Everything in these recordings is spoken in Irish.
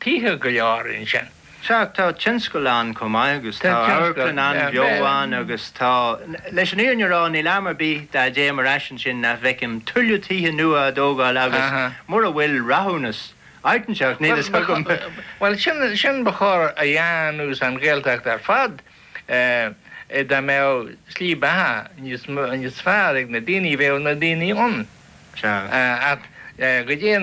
Tithe go leor ansin. Sea, tá tionscal ann chomh maith agus tá amharclann an-bheo ann agus tá, leis an fhírinne a rá, níl am ar bith dá dtéim ar ais ansin nach bhfeicim tuilleadh tithe nua á dtógáil agus mura bhfuil rathúnas ag teacht, níl a fhios agam. Bhuel, sin ba chóir a dhéanamh san Ghaeltacht ar fad. Dá mbeadh slí beatha níos fearr ag na daoine bheadh na daoine ann. Sea, ach goidé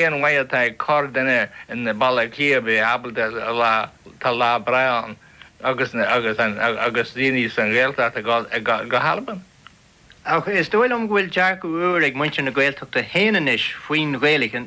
an mhaith atá ag corrdhuine i mBaile Átha Cliath a bheith ábalta rá, tá lá breá ann agus agus daoine sa nGaeltacht ag gabháil go hAlbain. Ach is dóiche liom go bhfuil dearcadh úr ag muintir na Gaeltachta féin anois faoin Ghaeilge.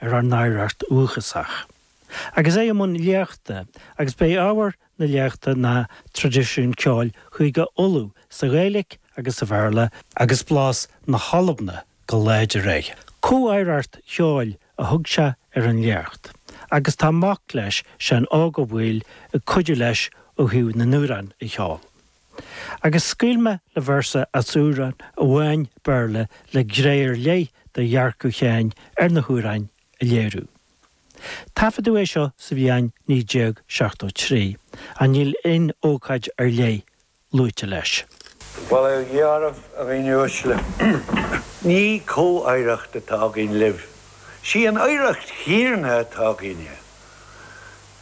ar ár n-oidhreacht dhúchasach agus é i mbun léachta agus b'é ábhar na léachta ná Traidisiún Ceoil Chúige Uladh sa Ghaeilic agus sa Bhéarla, agus blas na hAlban go láidir air. Comh-oidhreacht cheoil a thug sé ar an léacht agus tá mac leis, Seán Óg Ó Baoill, ag cuidiú leis ó thaobh na n-amhrán a cheol. agus scaoilfidh mé le véarsa as amhrán amháin Béarla le gné ar leith de dhearcadh Sheáin ar na hamhráin a léiriú. Taifeadadh é seo sa bhliain 1973 ach níl aon ócáid ar leith luaite leis. Bhuel, a chara a dhaoine uaisle, ní comh-oidhreacht atá againn libh, is í an oidhreacht chéanna atá againne.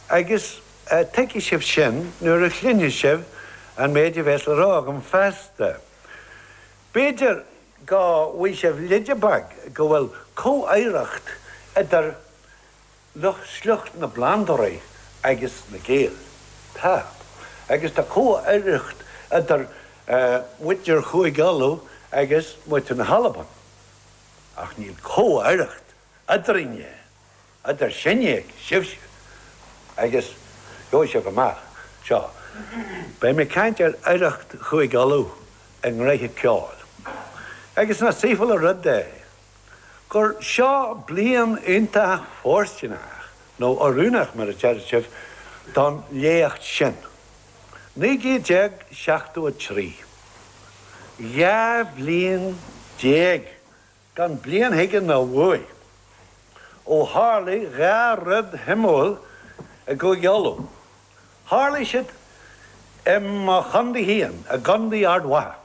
Agus tuigfidh sibh sin nuair a chluinfidh sibh an méid a bheas le rá agam feasta? B'fhéidir go bhfaighidh sibh leide beag go bhfuil comh-oidhreacht idir sliocht na bplandóirí agus na Gaeil. Tá. Agus tá comh-oidhreacht idir muintir Chúige Uladh agus muintir na hAlban. Ach níl comh-oidhreacht eadrainne. Idir sinne agus sibh agus gheobhaidh sibh amach. Seo, beidh mé ag caint ar oidhreacht Chúige Uladh i ngnoithe ceoil. Agus nach saoithiúil an rud é gur seo bliain iontach fóirsteanach, nó oiriúnach mar a deir sibh, don léacht sin. Naoi gcéad déag seachtó a trí. Dhá chéad bliain gan bliain chuige ná uaidh. Ó tharlaigh dhá rud shuimiúla i gCúige Uladh. Tharlaigh siad i mo chondae féin, i gCondae Ard Mhacha.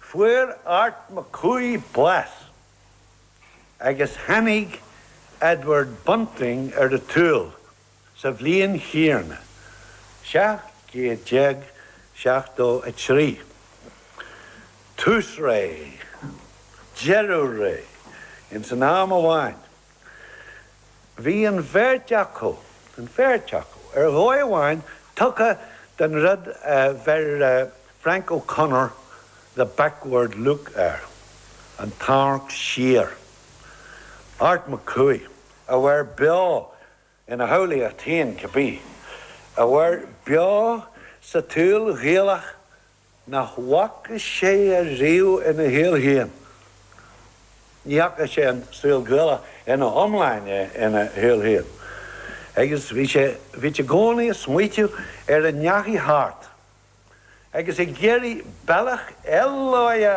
Fuair Art Mac Cumhaigh bás agus tháinig Edward Bunting ar an tsaol Sa bhliain chéanna, 1773, tús ré, deireadh ré ins an am amháin, bhí an bheirt acu, an bheirt acu, ar dhóigh amháin, tugtha don rud a bheir Frank O'Connor the backward look air, an t-amharc siar. Art Mac Cumhaigh a mhair beo Ina shamhlaíocht féin cibé, a mhair beo sa tsaol Ghaelach nach bhfaca sé ariamh ina shaol féin, ní fhaca sé an saol Gaelach ina iomláine ina shaol féin, agus bhí sé i gcónaí ag smaoiteamh ar a ndeachaigh thart, agus ag iarraidh bealach eile a.